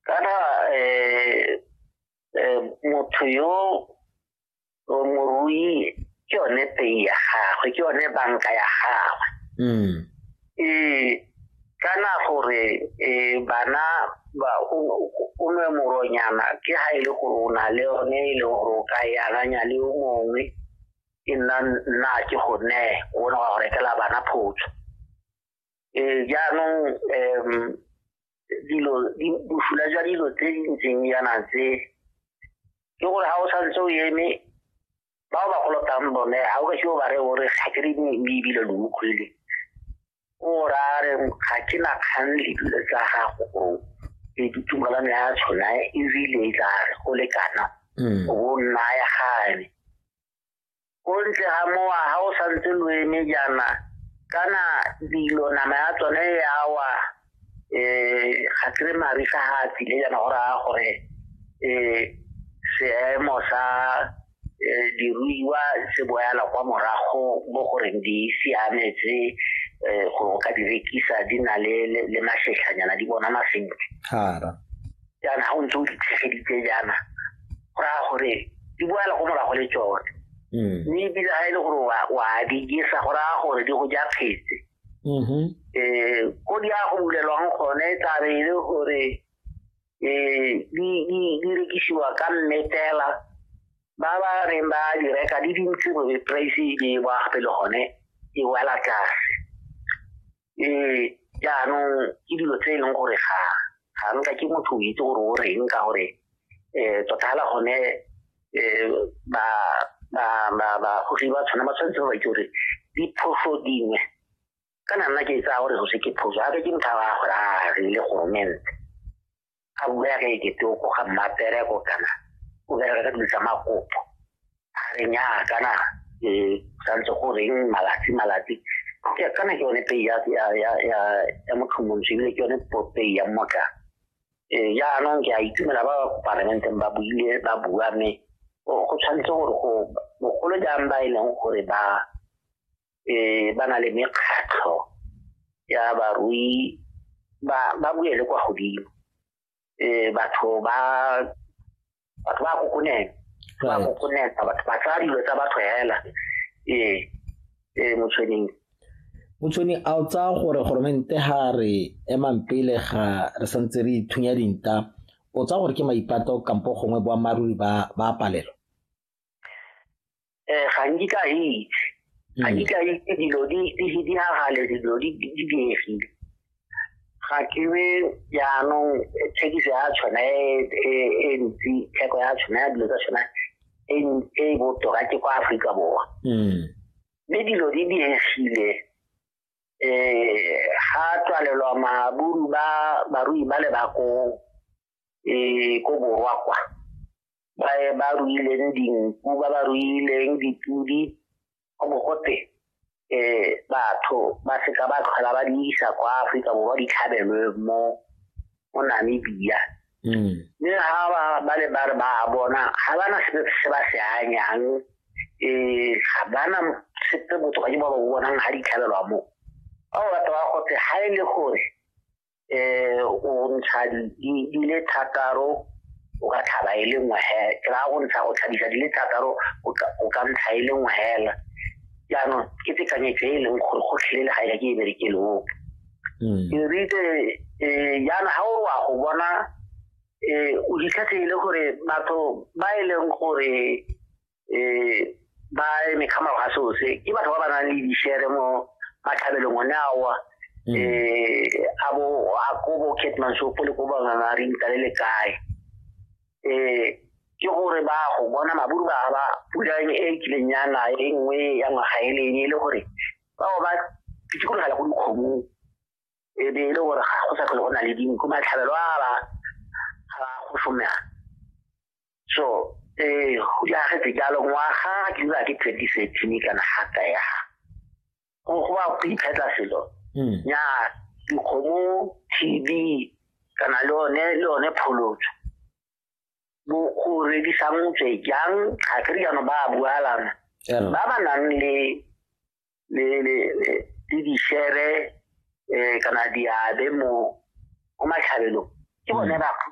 kana eh, eh, motho yo morui ke yone pei ya gagwe ke yone banka ya gagwe mm. e kana gore e bana ba o nwe moronyana ke ha e le gore o na le yone e le gore o ka e akanya le o mongwe e nna nna ke go ne o ne wa go rekela bana photso um jaanong um dilo bosula jwa dilo tse di ntseng yana tse ke gore ga o santse o eme ba o ba kolotang bone ga o ka ke o ba re o re ga ke re ebile lo utlwile o ra re ga ke na kgang le dilo tsa gago o e ditumalano ya tshona ebile e tla re go lekana mm. o bo nnaya gane ko ntle ga mowa ga o santse lo eme jaana kana dilo nama ya tsone ya wa um ga kry marisa ga a tsile jaana go raya gore um seemo sa um diruiwa se boyala kwa morago mo goreng di siametse um go ka di rekisa di na le masetlhanyana di bonana sentle jaana ga o ntse o ditlhegeditse jaana go raya gore di boela go morago le tsone mm. mme ebile ga e le gore wa di jesa go raya gore di go ja phetse um mm-hmm. eh, ko di ya go bulelwang gone e tlabe e le gore um di rekisiwa ka mmetela ba ba reng ba di reka di dintsi gore price e ba gape le gone e wela tlase um jaanong ke dilo tse e leng gore ga ga nka ke motho o itse gore o reng ka gore um tota fela gone um ba bagogi ba tshwana ba tshwanetse ba itse gore diphoso dingwe kana nna ke tsaya gore go se ke phoso gape ke motho a gore a rile goromente a bua ka ekete o koga mmapereko kana o bereka ka dilo tsa makopo a re nyaa kana e santse go reng malatsi malatsi kana ke yone pei ya motlhomontsho ebile ke yone pei ya mmotla ee, jaanong ke a itumela ba ba ko parlamenteng ba buile ba bua mme go tshwanetse gore go bogolo jang ba e leng gore ba eh ba na le mekgatlho ya barui ba ba buele kwa godimo eh batho ba batho ba kokonela ba kokonela batho ba tsaya dilo tsa batho hela eh eh motshweneng motshweni a o tsaya gore goromente ga re emang pele ga re santse re ithunya dinta o tsaya gore ke maipato kampo gongwe boammaaruri ba ba palelo eh ga nkitla a itse ga nkitla hmm. a itse dilo di di hagale dilo di di diegile ga ke be jaanong thekiso ya tshwana e, e, e ntsi theko ya tshwana ya dilo tsa tshwana e, e botoka ke kwa aforika borwa hmm. mme dilo di diegile um ga tswalelwa maburu ba barui ba le bakong um ko borwa kwa ba ba ruileng dinku ba ba ruileng dipodi go bo gote um batho ba seka ba tlhola ba di isa kwa aforika borwa di tlhabelwe mo mo namibia mm. mme ga ba ba le ba re ba bona ga ba na sepe se ba se anyang um ga ba na sepe botho ba ke ba ba bonang ga di tlhabelwa mo ba o batho ba gote ga e le gore eh o ntsha di di le thataro o ka tlhaba e le nngwe he ke ra go ntsha go tlhabisa di le thataro o ka ntsha e le nngwe hela jaanong ke tekanyetso e e leng gore go tlhelele ga e ka ke e berekele ope hmm. ke ritse um jaana ga o wa go bona um o ditlhatlhe e le gore batho ba e leng gore eh ba e mekgama ga so se ke batho ba ba nang le di share mo ba tlhabelo ngone awa mm. eh abo a ko bo ketman so pole ko ba ngana ri ntale le kae eh ke gore ba go bona maburu ba ba pula e kileng ya na e nngwe ya ngwaga e leng e le gore ba ba pitsikologa le go dikgomo e be e le gore ga go sa tlhole go na le dinku matlhabelo a ba ga go somela so eh go ya ga dijalo ngwaga ke ba ke 2013 kana hata ya go go ba go iphetla selo hmm. ya dikgomo TB kana le one le one pholotso bo go redisa motse jang ga ke riano ba bualana ba ba nang le le le le di share eh kana diabe mo o matlhabelo ke bone ba